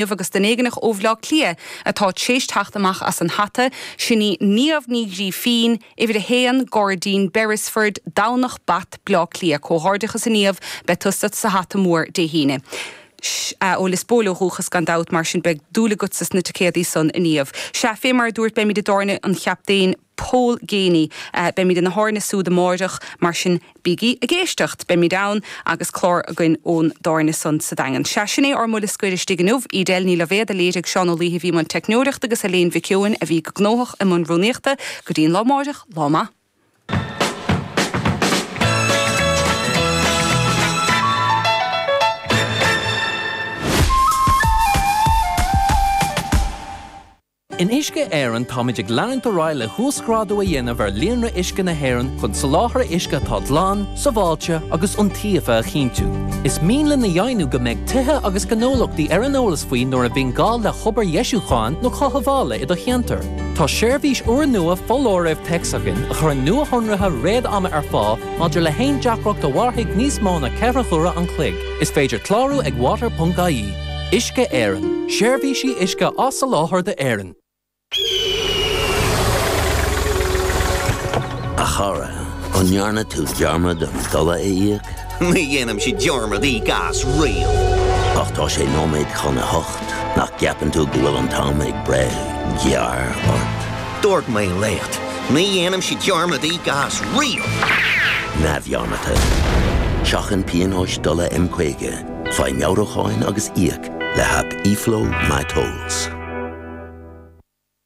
inniu agus duine éigneach ó Bhleá Cliath atá tréis teacht amach as an hata, sin í Niamh Ní Ghrífín, Uimhir 1, Gairdín Beresford, Domhnach Bat, Bleá Cliath. Comhghairdeachas a Niamh, beidh tusa sa hata mór Dé hAoine. Ó Lios Póil ó dhúchas gan dabht, mar sin beidh dúil agatsa sna ticéadaí san a Niamh. Sea, fé mar a dúirt, beimid i dtábhairne an Chaptaein Paul Geaney. Beimid ina thábhairne súd amáireach, mar sin bígí ag éisteacht. Beimid ann agus clár againn ón dtábhairne san sa Daingean. Sea, sin é ár mbuille scoir istigh inniu. Edel Ní Loibhéad a léirigh Seán Ó Lúbhaigh a bhí i mbun teicneoireachta agus Eiléan Mhic Eoin a bhí go gnóthach i mbun rúnaíochta. Go dtí an lá amáireach, lá maith. In Uisce Éireann táimid ag leanúint ar aghaidh le huasghrádú a dhéanamh ar líonra uisce na hÉireann chun soláthar uisce atá glan, sábháilte agus iontaofa a chinntiú. Is mian linn a dheimhniú go mbeidh tithe agus gnólachtaí ar an eolas faoi nuair a bhíonn gá le hobair dheisiúcháin nó chothabhála i do cheantar. Tá seirbhís úrnua foláirimh téacs againn a chuireann nuashonruithe réadama ar fáil maidir le haon deacracht a mhairfidh níos mó ná ceithre huaire an chloig. Is féidir clárú ag water.ie. Uisce Éireann, seirbhísí uisce á soláthar d'Éirinn. A chara, an ndearna tú dearmad den dola a íoc? Ní dhéanaim sí dearmad íoc as riamh. Ach tá sé nóiméad chun a hocht, nach gceapann tú go bhfuil an t-am ag breith gearr ort? Dúirt mé leat, ní dhéanaim sí dearmad íoc as riamh! Neamhdhearmadta. Seachain pionóis dola M50. Faigh meabhrúcháin agus íoc le haip eFlow MyTolls.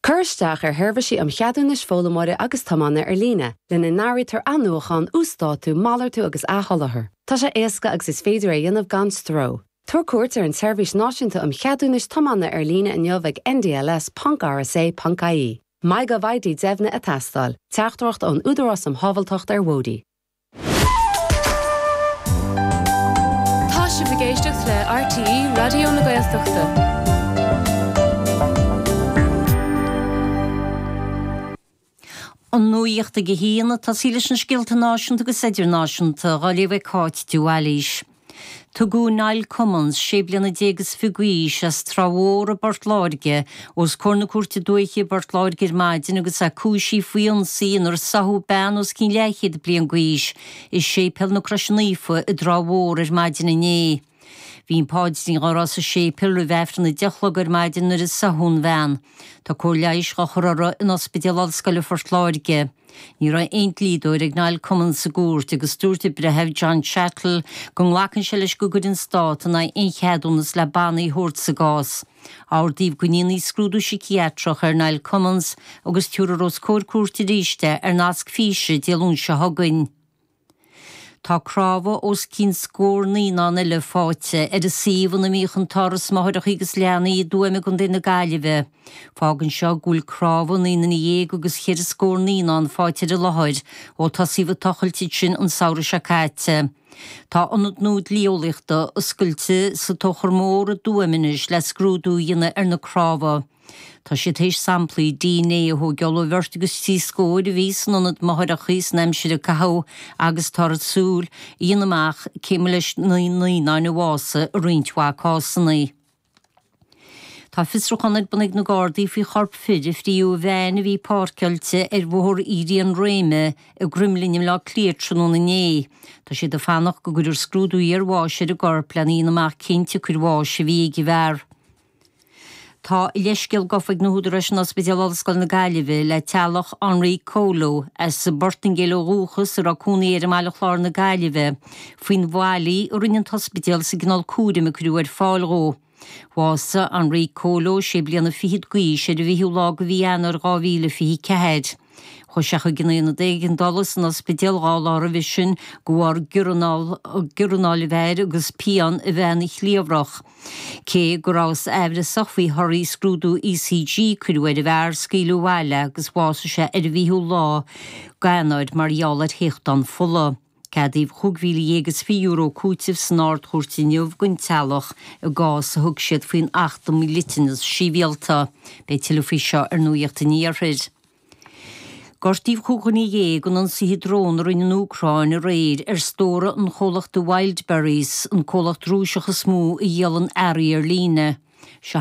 Cuir isteach ar sheirbhísí um cheadúnais foghlaimeoíri agus tiomána ar líne, lena n-áirítear athnuachán, uasdátú, malartú agus athsholáthar. Tá sé éasca agus is féidir é a dhéanamh gan stró. Tabhair cuairt ar an tSeirbhís Náisiúnta um Cheadúnais Tiomána ar líne inniu ag ndls ponc rsa ponc ie. MyGovID Deimhnithe ag teastáil, Teachtaireacht ón Údarás um Shábháilteacht ar Bhóithre. Tá sibh ag éisteacht le RTÉ Raidió na Gaeltachta. An nuacht ag a haon. Tosaí leis na scéalta náisiúnta agus idirnáisiúnta. Á léamh ag Cáit de Bhailís. Tugadh Niall Cummins, sé bliana déag is fiche d'aois, as Trá Mhór i bPort Láirge, os comhair na Cúirte Dúiche i bPort Láirge ar maidin agus é cúisithe faoi ionsaí inar sáthadh bean os cionn leathchéad bliain d'aois i Séipéal na Croise Naofa i dTrá Mhór ar maidin inné. Bhí an páidrín á rá sa séipéal roimh aifreann a deich a chlog ar maidin nuair a sáthadh an bhean. Tá cóir leighis á chur orthu in Ospidéal Ollscoile Phort Láirge. Ní raibh aon dlíodóir ag Niall Cummins sa gcúirt agus dúirt an breitheamh, John Cheatle, go nglacann sé leis go gcuirfidh an Stát in aghaidh aon cheadúnas le bannaí a thabhairt sa gcás. Ordaíodh go ndéanfaí scrúdú siciatreach ar Niall Cummins agus tabharfar os comhair cúirte aríst é ar nasc físe Dé Luain seo chugainn. Tá cnámha os cionn scór naíonán eile fáighte ar an suíomh ina mbíodh an tÁras Máithreacha agus Leanaí i dTuaim i gContae na Gaillimhe. Fágann seo go bhfuil cnámha naoi nduine dhéag agus cheithre scór naíonán fáighte ar an láthair ó tosaíodh ag tochailt ansin an samhradh seo caite. Tá ionad nua dlí-eolaíochta oscailte sa Tóchar Mór i dTuaim anois le scrúdú a dhéanamh ar na cnámha. Tá siad théis samplaí DNA a thógáil ó bheirt agus trí scóir a bhí san ionad máithreachaí san aimsir a caitheadh agus táthar ag súil a dhéanamh amach cé mba leis na naíonáin a bhásaigh i roinnt mhaith cásanna. Tá fiosrúchán ar bun ag na Gardaí faoi chorp fir a fríodh i veain a bhí páirceáilte ar Bhóthar Éirí na Gréine i gCroimlinn i mBleá Cliath tráthnóna inné. Tá siad ag fanacht go gcuirfear scrúdú iarbháis ar an gcorp lena dhéanamh amach cén tsiocair bháis a bhí ag an bhfear. Tá a leithscéal gafa ag na húdaráis in Ospidéal Ollscoile na Gaillimhe le teaghlach Henri Coelho, as an bPortaingéil ó dhúchas, a raibh cónaí air i mBaile Chláir na Gaillimhe, faoin bhfaillí a rinne an t-ospidéal sa gcineál cúraim a cuireadh ar fáil dhó. Bhásaigh Henri Coelho sé bliana fichead d'aois ar an bhfichiú lá de mhí Eanáir 2024. Chuaigh sé chuig an aonad éigeandála san ospidéal dhá lá roimhe sin de bharr giorranáil a bheith air agus pian a bheith ina chliabhrach. Cé go rabhthas aimhreasach faoi thorthaí scrúdú ECG a cuireadh ar an bhfear scaoileadh abhaile agus bhásaigh sé ar an bhfichiú lá d'Eanáir mar gheall ar théachtán fola. Ceadaíodh €35,000 cúitimh san Ard-Chúirt inniu don teaghlach i gcás a thug siad faoin Acht um Dhliteanas Sibhialta. Beidh tuilleadh faoi seo ar Nuacht an Iarthair. Gortaíodh cúig dhuine dhéag in ionsaithe drón a rinne an Úcráin aréir ar stórtha an chomhlachta Wildberries, an comhlacht Rúiseach is mó a dhíolann earraí ar líne. Seo